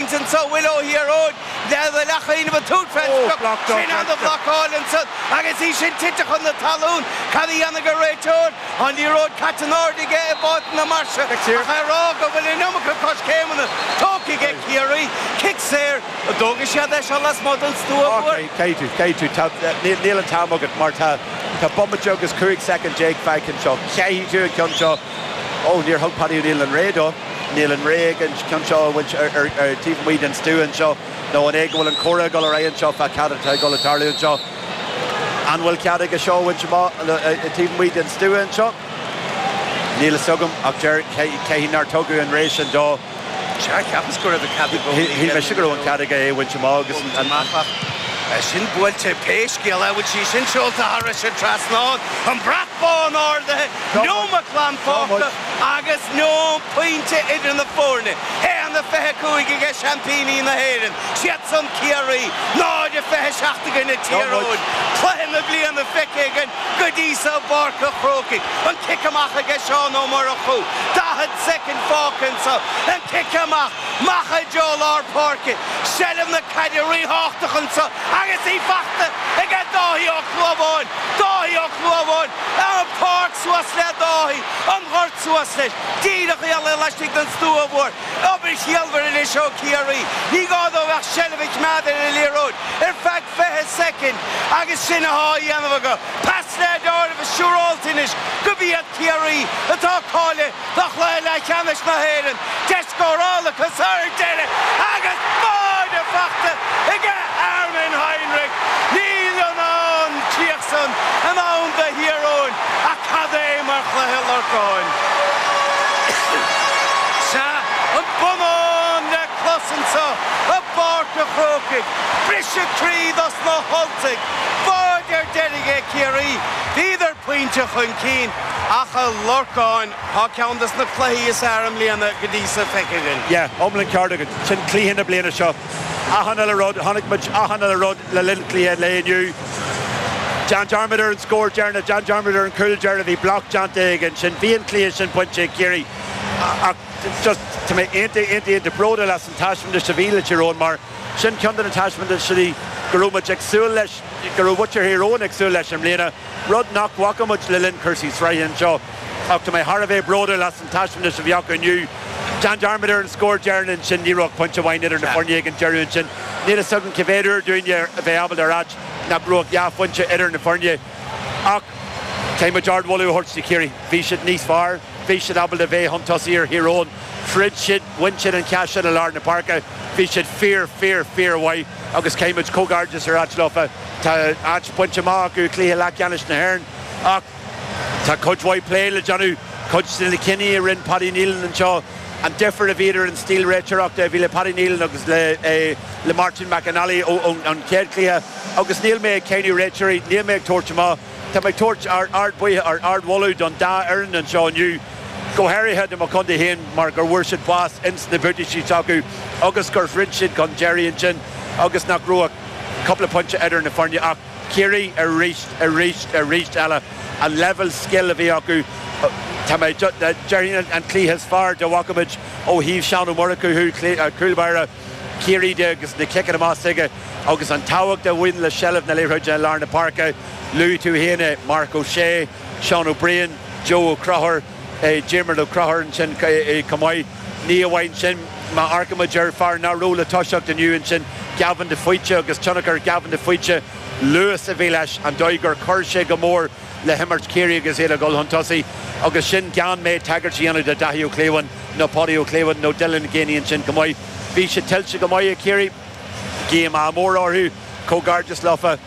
Sa bhfuil ó thiar uainn le do leac oinigh ba túr Cranstock, sin ana-bhlocáil ansan agus í sin tite chun na talún. Cad a dhéanfaidh an réiteoir? An liathróid caite in airde aige i bPáirc na Marsa ach é a rá go bhfuil an iomarca coiscéimeanna tógtha aige Ciarraí. Cic saor a d'fhógair sé, é seo lasmuigh den stua mór. Caithfidh tú, caithfidh tú, níl an t-am agat mar tá bomaite agus 15 soicind fágtha anseo, caithfidh tú an ceann seo. Ó, níor thug Paddy Neilan an rogha dó. Níl an rogha aige an ceann seo a bhaint ar taobh amuigh den stua anseo. Nó an é go bhfuil an comhrá ag dul ar aghaidh anseo fá cad atá ag dul a tarlú anseo? An bhfuil cead aige seo a bhaint amach taobh amuigh den stua anseo? Níl a fhios agam, ach deir, cad chuige nár tugadh an rogha sin dó? Sea, cheapas go raibh an cead i gcónaí aige. Shíl mise go raibh an cead aige é a bhaint amach agus an amach ach tá sin buailte pé scéal é. Bhfuil sí sin seolta thar an trasnán? An brat bán ardaithe, neomat glan fágtha agus níl ach pointe idir na foirne. 1-25 aige seaimpíní na hÉireann, siadsan Ciarraí, 0-27 aige na Tír Eoghain. Cluiche na bliana feicthe againn. Go dtí so i bPáirc an Chrócaigh an cic amach aige Seán Ó Murchú. Daichead soicind fágtha anseo, an cic amach, amach i dtreo lár páirce, seilbh na caide ríthábhachtach anseo agus í fachta aige Dáithí Ó Clubháin, Dáithí Ó Clubháin, ar an páirc suas le Dáithí, an gort suas leis, díreach i ealaín laistigh den stua mhór, obair chiallmhar anois ó Chiarraí, ní gá dóibh ach seilbh a choimeád ar an liathróid ar feadh. 20 soicind agus sin athá a dhéanamh acu. Pas le dorn is siúrálta anois gurb iad Ciarraí, atá cáilithe do chluiche leath-cheannais na h-Éireann, deis scórála acu sara ndeireadh agus báide fachta aige Armin Heinrich. Níl an an chríoch san i ndán do Thír Eoghain ach cad é mar chluiche a Lorcáin is an bonnán le clos anso i bPáirc a' Chrócaigh. Briseadh croí dos na hUltaigh báide ar deireadh ag Ciarraí. Bhíodar pointe chun cinn ach a Lorcáin, tá ceann dos na cluichí is fhearr i mbliana go dtí so feicthe againn. Yeah, iomlán ceart agat. Sin cluiche na bliana seo. Achan uile rud, chonaic muid achan uile rud le linn cluiche lae inniu. Déan dearmad ar an scór deireanach, déan dearmad ar an chúl deireanach, bhí block déanta aige ansin. Bhí an cluiche sin bainte ag Ciarraí ach just tá mé iontach, iontach, iontach bródúil as an taispeántas a bhí le Tír Eoghain mar, Sin ceann de na taispeántaisí go raibh muid ag súil leis, go raibh muintir Thír Eoghain ag súil leis i mbliana, rud nach bhfaca muid le linn cúrsaí sraithe anseo. Ach tá mé thar a bheith bródúil as an taispeántas a bhí acu inniu. Déan dearmad ar an scór deireanach ansin, ní raibh ach pointe amháin idir na foirne ag an deireadh ansin. Níl a fhios agam cé mhéad uair dúinne a bheith ábalta a ráit nach raibh ach dhá phointe idir na foirne. Ach caithfidh muid ardmholadh a thabhairt do Chiarraí. Bhí siad níos fearr, bhí siad ábalta bheith chun tosaigh ar Thír Eoghain, throid siad, bhain siad an ceann sin i lár na páirce. Bhí siad fíor, fíor, fíor mhaith agus caithfidh muid comhghairdeas a ráit leofa. Tá áit bainte amach acu i cluiche leathcheannais na hÉireann ach tá cuid mhaith plé le déanamh, cuid de na cinní a rinne Paddy Neilan anseo, An difear a bhí idir an stíl réiteoireachta a bhí le Paddy Neilan agus le Martin McNally ón chéad chluiche, agus níl mé ag cáineadh réiteoirí, níl mé ag tabhairt amach, tá mé ag tabhairt ardmhaoithe, ardmholadh don dá fhoireann anseo inniu, go háirithe do mo chontae féin mar go bhfuair siad bás ins na buataisí s'acu agus gur throid siad chun deiridh ansin agus nach raibh ach cúpla pointe idir na foirne ach Ciarraí arís, arís, arís eile. An leibhéal scil a bhí acu, tá mé ag déanamh an cluiche is fearr dá bhfaca muid ó thaobh Seán Ó Murchú, cúl báire Chiarraí, de agus na ciceanna amach s'aige agus an tábhacht a bhain le seilbh na liathróide i lár na páirce. Luaigh tú féin é, Marc Ó Sé, Seán Ó Briain, Joe Ó Conchúir. Diarmaid Ó Conchúir ansin chomh maith. Ní amháin sin, má amharcaimid ar fear nach raibh le toiseacht inniu ansin, Gavin de Faoite, agus tionchar Gavin de Faoite, luas a bhí leis, an dóigh gur chuir sé go mór le himirt Chiarraí agus iad a dhul chun tosaigh, agus sin gan mé tagairt a dhéanamh do Dhaithí Ó Clúmháin nó Páidí Ó Clúmháin nó Dylan Geaney ansin chomh maith. Bhí sé tuillte go maith ag Ciarraí. Guím ádh mór orthu. Comhghairdeas leofa.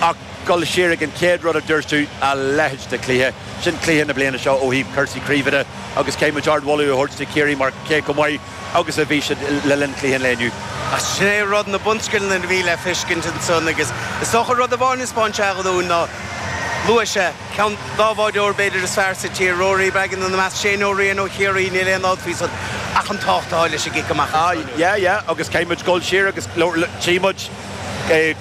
Ach dul siar ag an chéad rud a dúirt tú, a leithéid de chluiche. Sin cluiche na bliana seo ó thaobh cúrsaí craoibhe de agus caithfidh muid ard-mholadh a thabhairt do Chiarraí mar cé chomh maith agus a bhí siad le linn chluiche an lae inniu, Ach sin é rud, na bunscileanna a bhí le feiscint ansan agus is dócha rud amháin a thaispeáin sé dúinn ná, luaigh sé ceann dá bhfuil b'fhéidir is fearr sa tír, Rory Beggan, ina measc, Shane Ó Riain ó Chiarraí, níl aon dabht faoi san, ach an tábhacht atá leis an gcic amach ansan. Sea, yeah, yeah agus caithfidh muid dul siar agus tchí muid,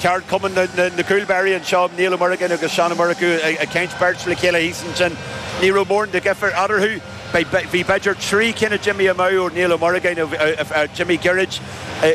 Ceardchumann na gCúl Báirí anseo, Niall Ó Morgáin agus Seán Ó Murchú ag caint beirt le chéile thíos ansin. Ní raibh mórán de dhifear eatarthu. Bhí b'fhéidir trí cinn a d'imigh amach ó Niall Ó Morgáin, a d'imigh gairid,